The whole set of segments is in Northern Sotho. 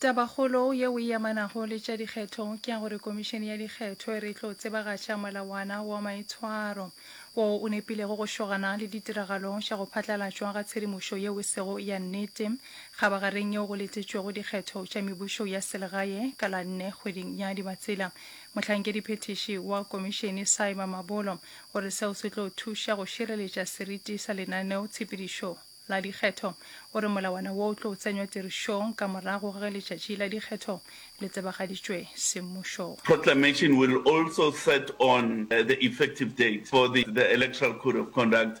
tabakgolo yeo e amanago le tša dikgetho ke ya gore komišene ya dikgetho e re tlo tsebagatša molawana wa maitshwaro woo o nepilego go šogana le ditiragalo tša go phatlalatšwa ga tshedimošo yeo e sego ya nnete kgabagareng yeo go letetšwego dikgetho tša mebušo ya selegae ka la nne kgweding ya dibatsela Mohlankedi-phethiši wa Komišene Saima Mabolo o re seo se tlo thuša go šireletša seriti sa lenaneo tshepedišo la dikgetho. O re molawana wo o tlo tsenywa tirišong ka morago ga ge letšatši la dikgetho le tsebagaditšwe semmušong. proclamation will also set on the effective date for the the Electoral Code of Conduct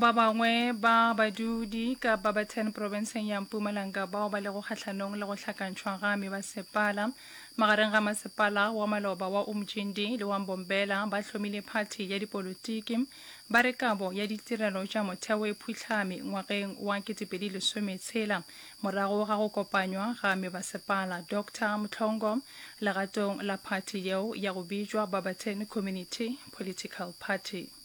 Ba bangwe ba badudi ka Barberton profenseng ya Mpumalanga bao ba lego kgahlanong le go hlakantšhwa ga memasepala magareng ga masepala wa maloba wa Umjindi le wa Mbombela ba hlomile phathi ya dipolotiki ba re kabo ya ditirelo tša motheo e phuhlame ngwageng wa 2016 morago ga go kopanywa ga mebasepala Dr Mhlongo legatong la phathi yeo ya go bitšwa Barberton Community Political Party.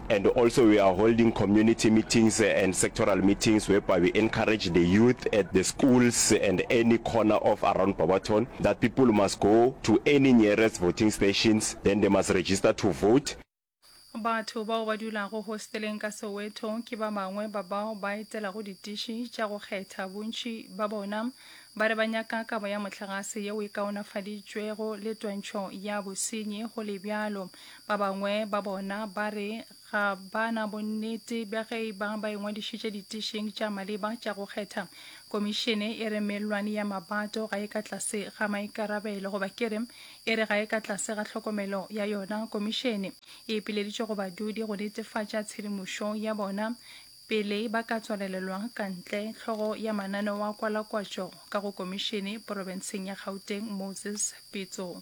And also we are holding community meetings and sectoral meetings whereby we encourage the youth at the schools and any corner of around Barberton that people must go to any nearest voting stations then they must register to vote. Batho bao ba dulago hosteleng ka Soweto ke ba bangwe ba bao ba etelago ditiši tša go kgetha, bontši ba bona ba re ba nyaka kabo ya mohlagase yeo e kaonafaditšwego le twantšho ya bosenyi go le bjalo. Ba bangwe ba bona ba re ga ba na bonnete bja ge e ba ba ingwadišitše ditišing tša maleba tša go kgetha. Komišene e re mellwane ya mabato ga e ka tlase ga maikarabelo goba ke re e re ga e ka tlase ga tlhokomelo ya yona. Komišene e ipileditše go badudi go netefatša tshedimošo ya bona pele ba ka tswalelelwa ka ntle. Tlhogo ya mananeo a kwalakwatšo ka go komišene porofenseng ya Gauteng, Moses Pitso.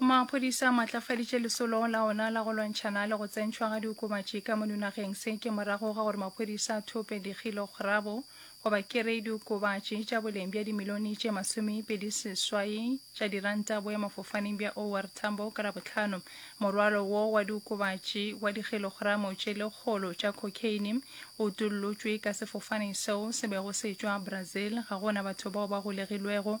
Maphodisa a maatlafaditše lesolo la ona la go lwantšhana le go tsentšhwa ga diokobatši ka mono nageng. Se ke morago ga gore maphodisa a thope dikgilograbo goba kerei diokobatši tša boleng bja dimilione tše masomepedi seswai tša diranta boemafofaneng bja OR Tambo ka Labohlano. Morwalo wo wa diokobatši wa dikgilogramo tše lekgolo tša cocaine o utollotšwe ka sefofane seo se bego se tšwa Brazil. Ga go na batho bao ba golegilwego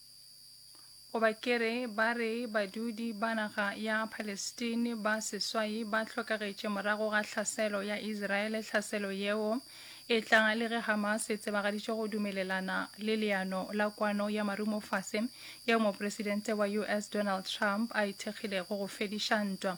Goba ke re, ba re badudi ba naga ya Palestine ba seswai ba hlokagetše morago ga hlaselo ya Israele. Hlaselo yeo e tla le ge Hamas e tsebagaditše go dumelelana le leano la kwano ya marumofase yeo Mopresidente wa US Donald Trump a e thekgilego go fediša ntwa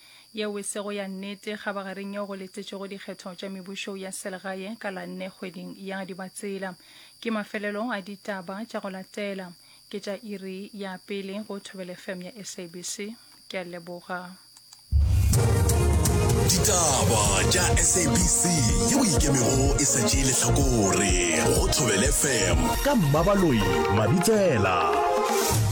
Yeo e sego ya nnete kgabagareng yeo go letetšwego dikgetho tša mebušo ya selegae ka la nne kgweding ya Dibatsela. Ke mafelelo a ditaba tša go latela. Ke tša iri ya pele go Thobele FM ya SABC. Ke a leboga. Ditaba tša SABC yeo e ikemego e sa tšee lehlakore go Thobele FM. Ka Mmabaloi Mabitsela.